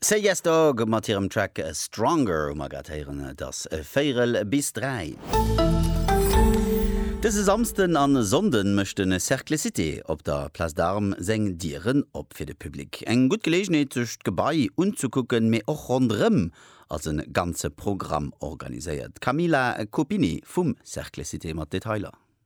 Say Yes Dog mat hirem Track Stronger hu mer grad héieren. Et ass véierel bis dräi. Dëse Samsden a Sonnde mécht de Cercle Cité op der Place d'Armes seng Dieren op fir de Public. Eng gutt Geleegenheet sech d'Gebai unzekucken, mee och ronderëm ass e ganze Programm organiséiert. D'Camila Copini vum Cercle Cité mat Detailer.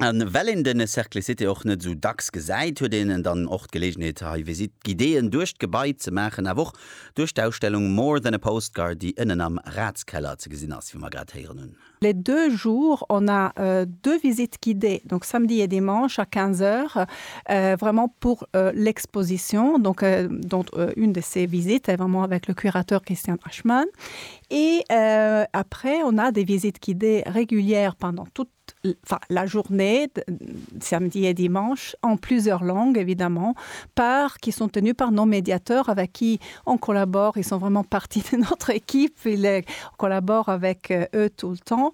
A well een de Cercle Cité och net esou dacks gesäit, huet een dann och d'Geleegenheet hei Visite guidéeën duerch d'Gebai ze maachen, awer och duerch d'Ausstellung More than a Postcard, déi ënnen am Ratskeller ze gesinn ass, wéi mer grad héieren hunn. Les deux jours, on a deux visites guidées, donc samedi et dimanche à 15 heures, vraiment pour l'exposition, donc dont une de ces visites est vraiment avec le curateur Christian Aschman. Et après, on a des visites guidées régulières pendant toute. la journée, samedi et dimanche, en plusieurs langues évidemment, par, qui sont tenus par nos médiateurs avec qui on collabore, ils sont vraiment partie de notre équipe, on collabore avec eux tout le temps.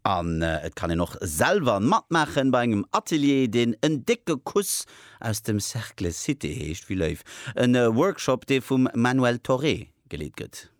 An et kann een och selwer matmaachen bei engem Atelier, deen En décke Kuss aus dem Cercle Cité heescht, Villeuyf, e Workshop, dee vum Manuel Thoré geleet gëtt.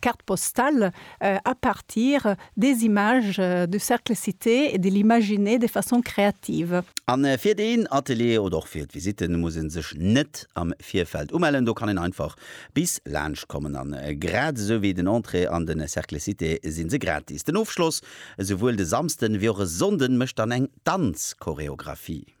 Carte postale à partir des images du cercle cité et de l'imaginer de façon créative. A fir deen Atelier oder och fir d'Visitte muss ee sech net am Virfeld umellen. Do kann een einfach bis laanscht kommen. A grad esou wéi den Entrée an de Cercle Cité si se gratis. Den Ofschloss, esouwuel de Samsden ewéi och e Sonnden, mécht dann eng Danzchoreographie.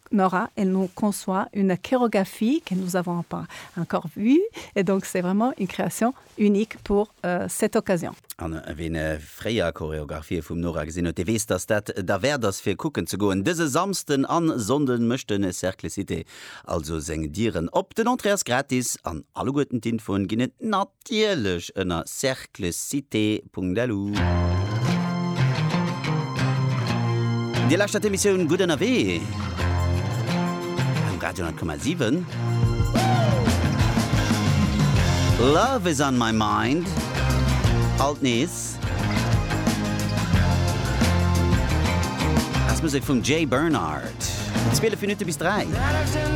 Nora, et non conçoit une chorégraphie que nous avons pas encore vue et donc c'est vraiment une création unique pour cette occasion. An ween fréier Choreographie vum Nora gesinn huet, dee weess, dass dat derwäert ass fir kucken ze goen. Dëse Samsden an Sonnden mécht de Cercle Cité also seng Dieren op. Den Entrée ass gratis an alleguerten d'Infoen ginn et nat. D'Ielech ënner cerclescite.lu. Dir lauschtert d'Emissioun Gutt ënnerwee um Radio 10,7. Love is on my mind, alt nees als Musek vum Jay Bernard. 12 Minutte bis 3.